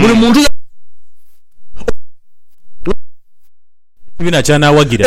Buli muntu ekibiina ky'anaawagira.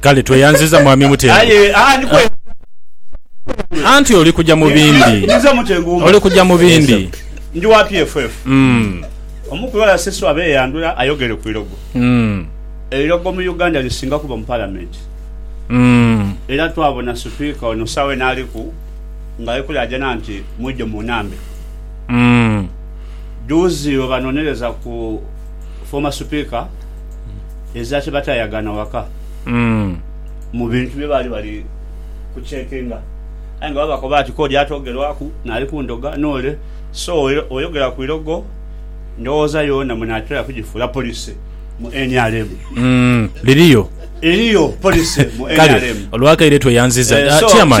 Kale tweyanziza Mwami Mutengu. Anti oli kuja mu bindi. Oli kuja mu bindi. Ndi wa PFF. Omu ku balasesi abeyandula ayogere ku ilogo. Eilogo mu Uganda lisinga kuba mu Palamenti. Era twabona Sipiika ono sawa eno aliku nga ali kulaajana nti mwidhe munambe. Duuzi webanonereza ku Former Sipiika. eza kye bataayagaana waka mu bintu bye baali bali kuceekinga. Aye nga babakoba ati, K'oli atoogerwaku n'ali ku ndhoga n'ole, so oyogera ku irogo, ndhoghoza yoona munaatera kugifuula police mu nrm. Liriyo. Eriyo police mu nrm. Kale olw'akaire tweyanziza Chairman.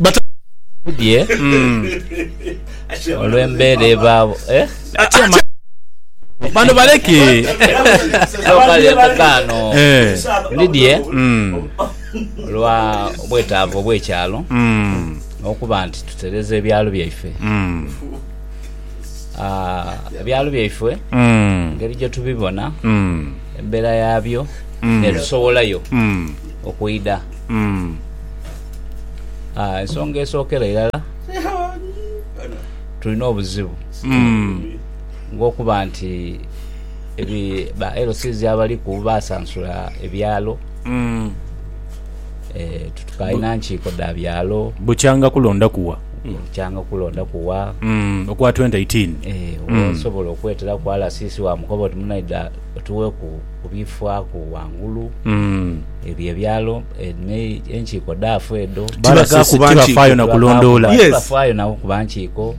Batabani bamubudhie olw'embeera ebaawo. Atya male bano baleke. Eno kale embaga eno ndidhie olwa bwetaavu obw'ekyalo n'okuba nti tutereza ebyalo byaife. Ebyalo byaife engeri gye tubibona, embeera yaabyo n'etusowolayo okwidha. Umm aah ensonga esookera irala tulina obuzibu ng'okuba nti ba LCs abaliku baasansula ebyalo titukalina nkiiko dha byalo. Bukyanga kulondaku wa? Bukyanga kulondaku wa? Okwa 2018? Eeh osobola okweteraku RCC waamukoba oti munaidha otuweeku. kubiifwaku ghangulu ebyo ebyalo enkiiko dhaafu edho tibafaayo na kulondoola tibafaayo na kuba nkiiko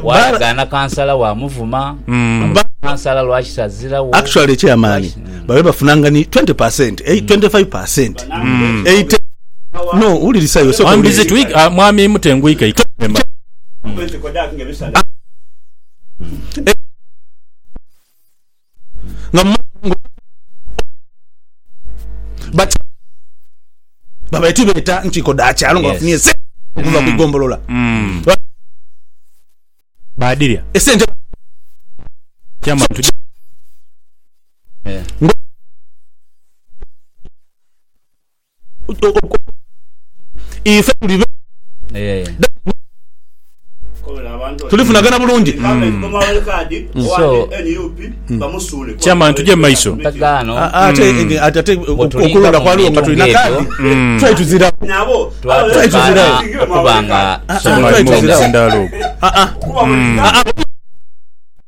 bwayagaana kansala waamuvuma kansala lwaki tazirawo actually chairman babe bafunanga ni 20 per cent 25 per cent no wulirisa iwe sooka wulirisa mwami Mutenguike nga mumaze obwongo but babaire tibeeta nkiiko dha kyalo nga bafunye esente okuva ku igombolola mm. badirya esente ife tuli beeru tulifunagana bulungi. Chairman tuje mumaiso. Okulonda kwaliwo nga tulina kaadi twali tuzirawo. Twali tuzirawo.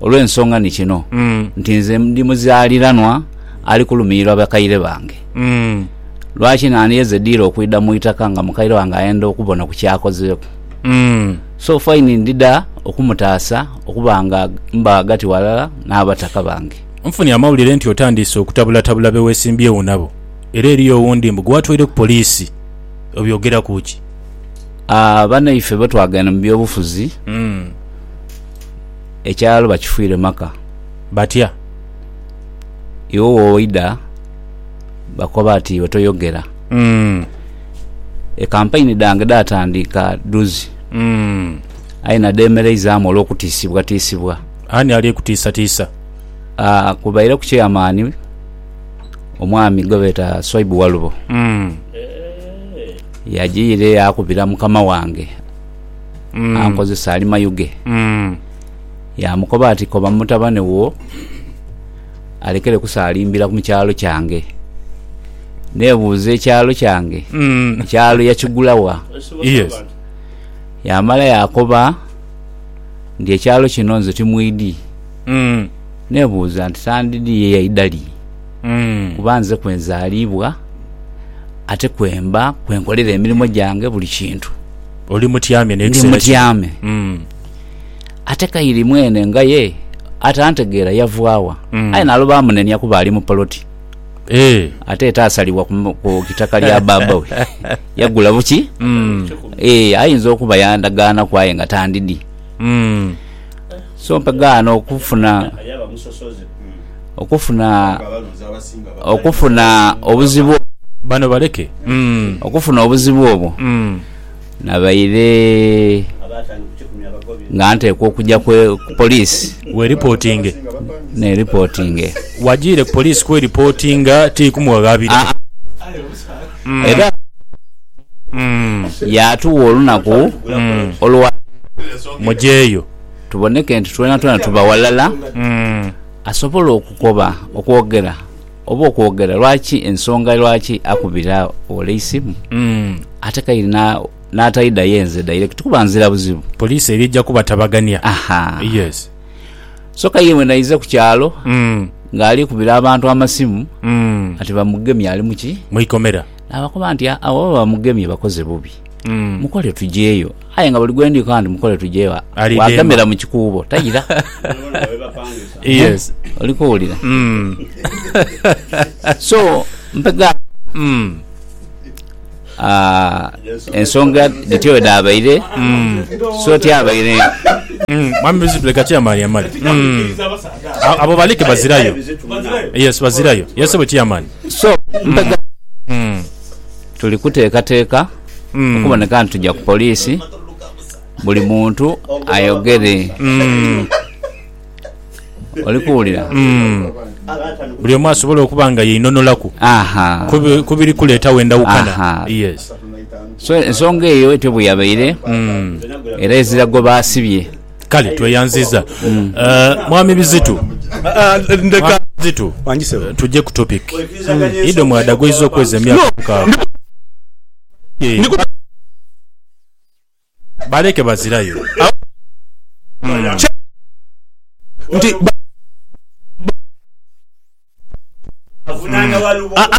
Olw'ensonga ni kino nti nze ndi muzaaliranwa ali kulumiirwa bakaire bange, lwaki nandiyeze diire okwidha mu itaka nga mukaire wange ayenda okubona ku ky'akozeeku? So faini ndidha okumutaasa okuba nga mba ghagati ghalala n'abataka bange. Nfunye amawulire nti otandiise okutabulatabula be weesimbyewo nabo era eriyo owundi mbu gwe watwaire ku poliisi. Obyogeraku ki? Banaife bwe twagenda mu by'obufuzi. ekyalo bakifuire maka. Batya? Iwe woidha bakoba ati iwe toyogera. Ekampaini dhange dhaatandiika dhuzi aye nadhemereizaamu olw'okutiisibwatiisibwa. Ani ali kutiisatiisa? Kubaireku Chairman omwami gwebeeta Swaibu Walubo, yajiire yaakubira mukama wange. Mm. ankozesa ali mayuge Mm. yaamukoba ati koba mutabane wo alekere kusaalimbira mu kyalo kyange neebuuza ekyalo kyange Mm. ekyalo yakigula wa Yes. yaamala yaakoba nti ekyalo kino nze timwidi Mm. neebuuza nti sandidi ye yaidali Mm. kuba nze kwenzaliibwa ate kwemba kwenkolera emirimu gyange buli kintu Oli mutyame ndi n'ekiseera kino. mutyame. Mm. Ate Kairi mwene nga ye atantegeera yavwa wa? Mm. Aye nalo baamunenia kuba ali mu poloti. Eh. Ate ete asalibwa ku mu- ku itaka lya bbaabba we. Yagula buki? Mm. Ee, ayinza okuba yandagaanaku aye nga tandidi. Mm. So nkegaana okufuna okufuna okufuna obuzibu obwo. Bano baleke okufuna obuzibu obwo. Nabaire nga nteekwa okugya ku poliisi. Weeripotinge. Neeripotinge. Wagiire ku poliisi kweripotinga tiri kumughaghabira? Aa-a. Era yaatuwa olunaku olwa. Mugyeyo. tuboneke nti twenatwena tuba walala, asobola okukoba okwogera oba okwogera lwaki ensonga lwaki akubira ole eisimu ate kaire n'ataidayo nze direct kuba nzira buzibu. Poliisi eri eja kubatabagania. Yes. So kaire bwenaize ku kyalo ng'ali kubira abantu amasimu ati bamugemye ali mu ki? Mu ikomera. Naabakoba nti, Abo oba bamugemye bakoze bubi, mukole tugyeyo. Aye nga buli gwe ndi nkoba nti mukole tuje ewa Ali demba. wagemera mu kikuubo taira. Yes. Oli kuwulira? Mm. So, mpegha Mm. ah, ensonga dhityo bwe dhaabaire, so tyabaire Mm. Mwami Bizibu leka chairman yamale. Mm. A- Abo balike bazirayo. Yes, bazirayo. Yes, we chairman. so mpegha Mm. Tuli kuteekateeka okuboneka nti tuja ku poliisi buli muntu ayogere. Oli kuwulira? Buli omu asobole okuba nga yeinonolaku Aha. ku bi- ku biri kuleetawo endawukana. Aha. Yes. So ensonga eyo etyo bwe yabaire era ezira gwe baasibye Kale tweyanziza uh, mwami Bizitu. Ndeka Bizitu, wangi sebo. tuje ku topic. Ido mwada gweyiza okweza emyaka mukaaga. Eh, baleke bazirayo. nti ba- Ah, ah.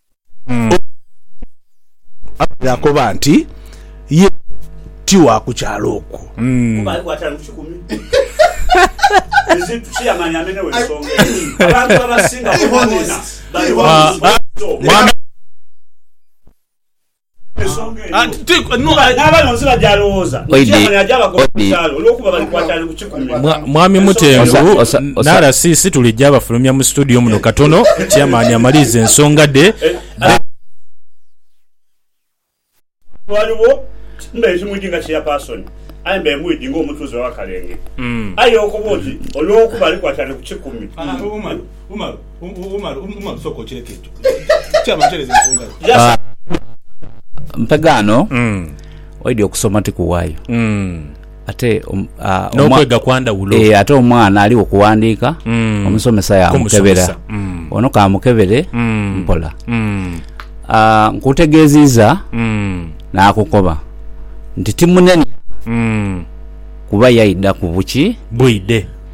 abaire akoba nti ye ti wa ku kyalo okwo. Mwami Mutengu na RCC tulija bafulumya mu situdiyo muno katono Chairman amalirize ensonga dhe. Mpegaano oidhi okusoma ti kuwayo ate omwana aligho kuwandiika omusomesa yamukebera ono kamukebere mpola nkutegeziiza nakukoba nti timunenya kuba yaidha kubuki bwidhe.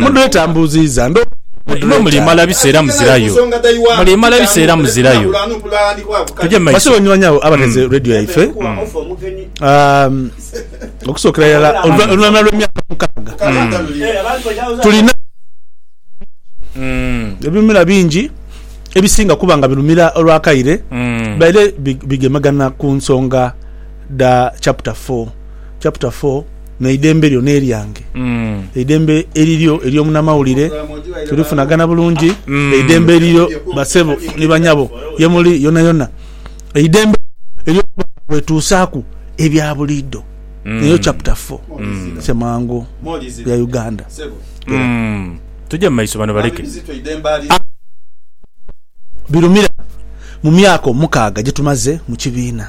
Mudwetambuziiza ndo Basiboo banywani abo abateze mm. radio yaife mm. um, okusookera yala oluvanhuma lw'emyaka mukaaga mm. tulina ebimera bingi ebisinga kuba nga birumira olwakaire baire bigemagana ku nsonga da chapter 4 chapter 4 N'eidembe lyo n'eryange, eidembe eriryo ery'omunamawulire, tulifunagana bulungi. Eidembe eriryo basebo ni banyabo ye muli yonayona, eidembe ery'okuba nga bwetuusaaku ebya buliidho. Eyo chapter four Ssemwango ya Uganda era. Tugye mu maiso bano baleke. Abaana bano birumira mu myaka omukaaga gye tumaze mu kibiina.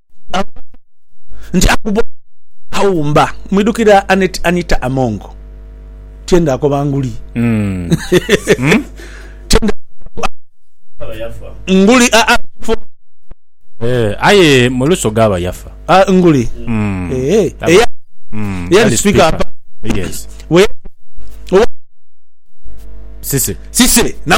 nti akuba aghumba mwidhukira Annet Anita Among tienga akoba nguli tienga nguli aa aye mulusoga aba yafa nguli eya eyali speaker apa we sise sise na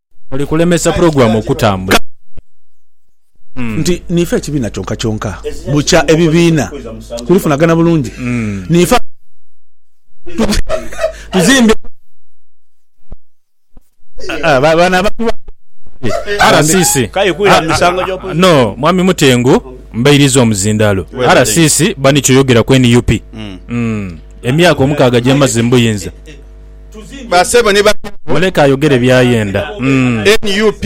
Oli kulemesa pulogulaamu okutambula. Nti niife ekibiina kyonkakyonka bukya ebibiina kulifunagana bulungi. Niife abantu abaagala tuzimbe eggwanga lyaffe. Bano abantu ba RCC no Mwami Mutengu mbairiza omuzindaalo. RCC bani kyoyogera ku nup emyaka omukaaga gyemaze mu buyinza. basebo ni banyabo. Muleke ayogere byayenda nup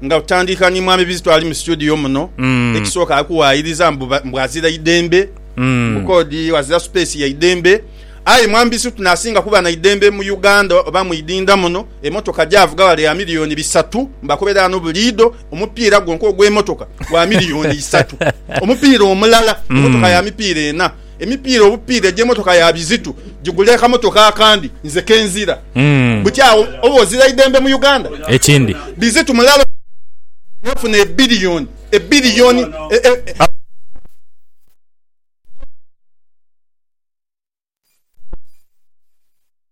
nga otandika ni mwami bizito ali mu studio muno ekisooka akuwayiriza mbu azira idembe mbu kodi azira space ya idembe aye mwami bizito nasinga kuba na idembe mu Uganda oba mwidinda muno emotoka javuga wale ya million bisatu mbu akobera ano buliido omupiira gwonka ogwemotoka gwa million isatu omupiira omulala emotoka ya mipiira ena Emipiira obupiira egy'emotoka ya bizitu gigule akamotoka akandi nze kenzira buti agho oba ozira idembe mu Uganda ekindi bizitu mulala yafuna ebillion ebillion e.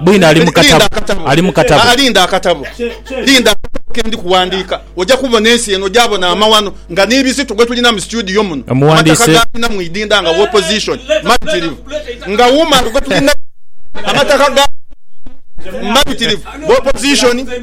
Bwino ali mu katabo. Ali mu katabo. Linda akatabo. Linda akatabo ke ndi kuwandiika. Oja kubona ensi eno, oja bona amaghano nga ni bizito gwe tulina mu situdiyo muno, amataka gaalina mu idinda nga wopozishoni mabitirivu, nga wuuma gwe tulina amataka gaalina mu idinda mabitirivu, wopozishoni.